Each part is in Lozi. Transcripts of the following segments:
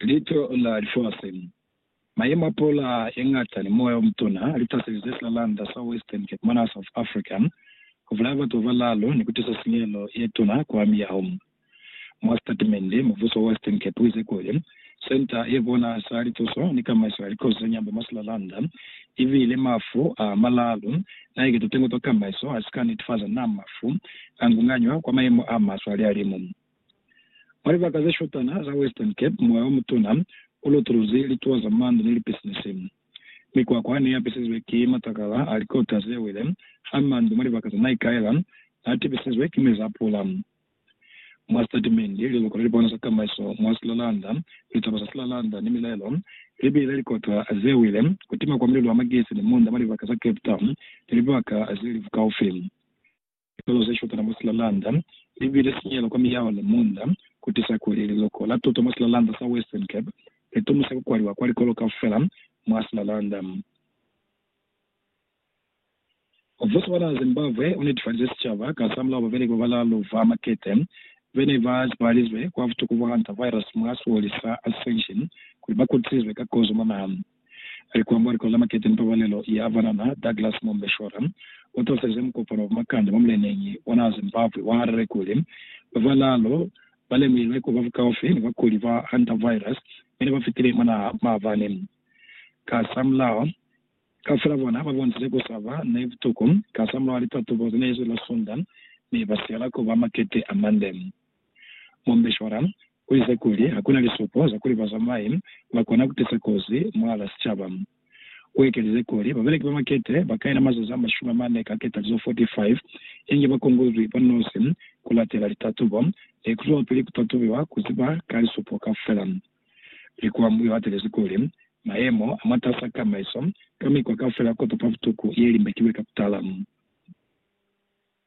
Lito la lifasi, mayemo a pula yeñata ni moya omutuna li taselize silalanda sa Western Cape mwanaa South Africa, kubulaya batu babalaalu ni kutisa sinyehelo yetuna kwa miyaho. Mwa sitatimende, mubuso wa Western Cape uize kuli, Senta ye bona sa lituso ni kamaiso ya likozi za nyambo mwa silalanda ibile mafu a malaalu naike tutengo twa kamaiso asika netefaza naa mafu angunganywa kwa mayemo a maswe alihalimu. Mwa libaka ze shotana za Western Cape, moya o mutuna u lutuluzi lituwa za mano ni lipisinisi. Mikwakwa ne ya pisizwe ki matakala a likota ze wile ha mandu mwa libaka za Naikaela n'a tibisizwe ki mezi a pula. Mwa sitatimende, liluko le lipona za tamaiso mwa Slalanda, litaba za Slalanda ni milaelo, li bile likota ze wile, ku tima kwa mililu a magesi ni munda mwa libaka za Cape Town ni libaka ze li bukaufi. Lilelo ze shutela mwa silalanda li bile sinyehelo kwa miyaho ni munda, ku tiisa kuli liloko la tuto mwa silalanda sa Western Cape li tumisa ku kwaliwa kwa likolo kaufela mwa silalanda. Mubuso wa naha Zimbabwe u netifalize sicaba ka za mulao babeleki ba balalu ba makete be ne ba zibahalizwe kwa butuku bwa hantavirus mwa sioli sa Ascension kuli ba kutisizwe ka kozo mwa naha. A li kwa Mboliko za Makete ni Pabalelo ya Banana, Douglas Mombeshora u tosize mukopano wa bumakande mwa muleneñi wa naha Zimbabwe wa Harare kuli, Ba balaalu ba lemuhilwe ku ba bukaufi ni bakuli ba hantavirus mi ne ba fitile mwa naha maabani. Kasamulaho, kaufela bona ba bonisize ku sa ba ni butuku kasamulaho wa litatubo ze ne zwi la Sunda mi ba siyela ku ba makete a mande. Mombeshwara uize kuli hakuna lisupo za kuli bazamai bakona kutisa kozi mwala sicaba. Uekelize kuli, Babeleki ba makete bakaina mazazi amashumi amane ka ketalizo 45 inge bakongozwi banosi kulatela litatubo ni kuzwelapili kutatubiwa kuziba ka lisupo kaufela. Likwambu yoatelezi kuli, Mayemo amatas'a kamaiso ka mikwa kaufela kotopa butuku yelimbekiwe ka kutala.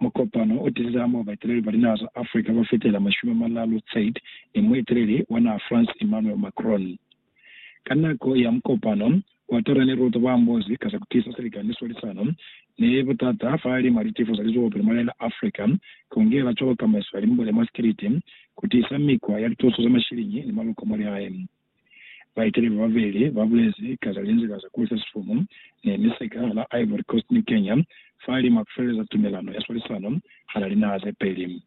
Mukopano o tizize hamoho baeteleli ba linaha za Africa ba fetela mashumi a malalu Tsade ni mueteleli wa naha France Emmanuel Macron. Ka nako ya mukopano, Ouattara ni Ruto ba ambozi ka za ku tiisa silikani ni swalisano ni butata fahalimw'a litifo za lizwelopele mwa lila Africa, ku ngela cwalo kamaiso ya limbule mwa sikiliti, ku tiisa mikwa ya lituso za mashiliñi ni maloko mwa lihae. Baeteli bababeli ba bulezi ka za linzila za kuisa sifumu ni misika hala Ivory Coast ni Kenya fa lima ku feleleza tumelano ya swalisano hala linaha ze peli.